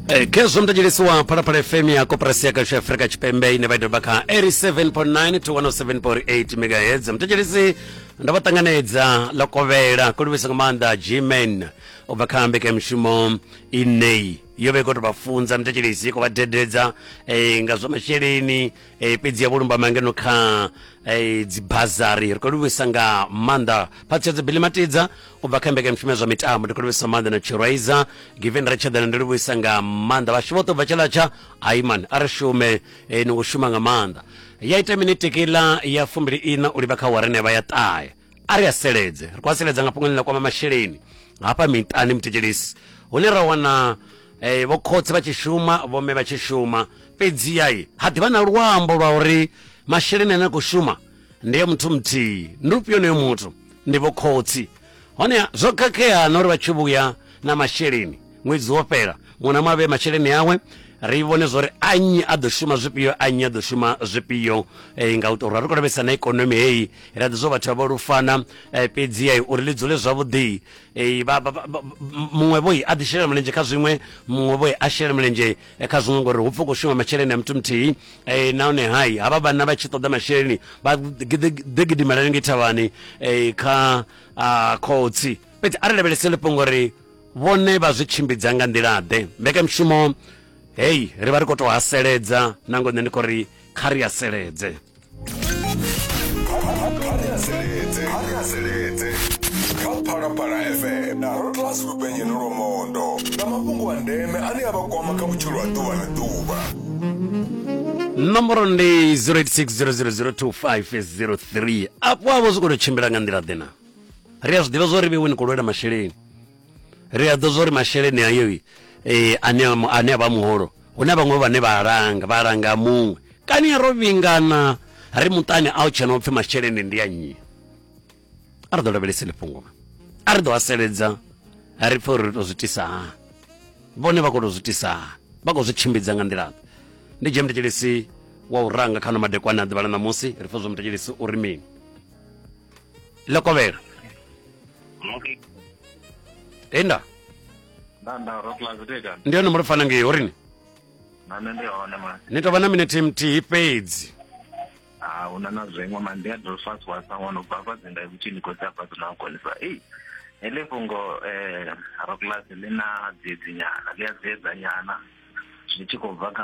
Eh, khezwo mtadzhelesi wa phalaphala fm ya koporasi ya kashu ya afurika tshipembe ine vha i doba kha 87.9 to 107.8 megahertz mtadzhelesi ndo vha ṱanganedza ḽo kovhela ko livhisa nga maanḓa gman u bva kha mbekanyamushumo ineyi yo vha i khou tou vha funza mtadzhelesi i khou vha dededza eh, nga zwa masheleni e, fhedzi ya vhulumbama ngeno kha e, dzibazari ri khou livhuisa nga maanḓa phatshedzo bili matidza u bva kha mbekanyamushumo ya zwa mitambo ndi khou livhuisa maanḓa na chiraiza given ri tshaḓana ndi livhuisa nga maanḓa vhashu vhoṱhe u bva tshaḽatsha aiman a ri shume e, ni u shuma nga maanḓa ya ita mini tekila ya fumbili ina u livha kha warene vha ya ṱahe a ri a seledze ri khou a seledza nga fhungoni ḽa kwama masheleni hafha miṱani muthetshelesi hune ra wana eh, vho khotsi vha tshi shuma vho mme vha tshi shuma fhedziha i ha ḓivha na luambo lwa uri masheleni ane a khou shuma ndi ya muthu muthihi ndi ufhio onoyo muthu ndi vho khotsi honeha zwo khakhea na uri vha tshi vhuya na masheleni ṅwedzi wo fhela ṅwana mu a vhee masheleni awe ri vhone zwori a nnyi a ḓo shuma zwifhio a nnyi a ḓo shuma zwifhio eh, nga u tou ri khou lavhelesa na ikonomi heyi ra ḓi zwo vhathu vha vho lufana eh, fhedzi eh, uri ḽi dzule zwavhuḓi eh, muṅwe vhoi a ḓi shela mulenzhe kha zwiṅwe muṅwe vhoi a shela mulenzhe eh, kha zwiṅwe ngori hu pfa u khou shuma masheleni a muthu muthihi eh, nahone hai havha vhanna vha tshi ṱoḓa masheleni vha ḓi gidimela lenge thavhani eh, kha ah, khotsi fhedzi a ri lavhelesele fhungo ri Vhone vha zwi tshimbidza nga nḓila-ḓe? Mbekanyamushumo heyi ri vha ri khou tou haseledza na ngo nṋe ndi khou ri kha ri haseledze phalaphala fm na rotlas lupenyeni lwamondo nga mafhungo a ndeme ane a vha kwama kha vhutshilo ha ḓuvha na ḓuvha nomboro ndi 0860002503 afho avho zwi khou tou tshimbila nga nḓila ḓe na ri a zwi ḓivha zwo ri vhewe ni khou lwela masheleni ri a ḓo zwa uri masheleni ayo eh, ane ane a vha muholo hu na vhaṅwe vhane vha langa vha langa muṅwe kani ro vhingana ri muṱani a u tshena upfhi masheleni ndi a nnyi a ri ḓo lavhelesele fhungo a ri ḓo haseledza ri pfhe uri ri to zwi tisa hani vhone vha khou to zwi tisa hani vha khou zwi tshimbidza nga nḓila ndi dzhia mutetshelesi wa u ranga kha no madekwana a ḓuvha la ṋamusi ri pfhe zwa mutetshelesi uri mini la ko weer e nda ndi hone muno fana ngei horini ni tovha na minete mthihi fhedzi huna na zwiṅwe mandi a dolfas wasawana ubva afha dzinda ikuthi ni khou dzi afha dzina ukonisa ei heḽi fhungo um roclas ḽi na dziedzinyana ḽi a dziedzanyana zwi tshi khou bva kha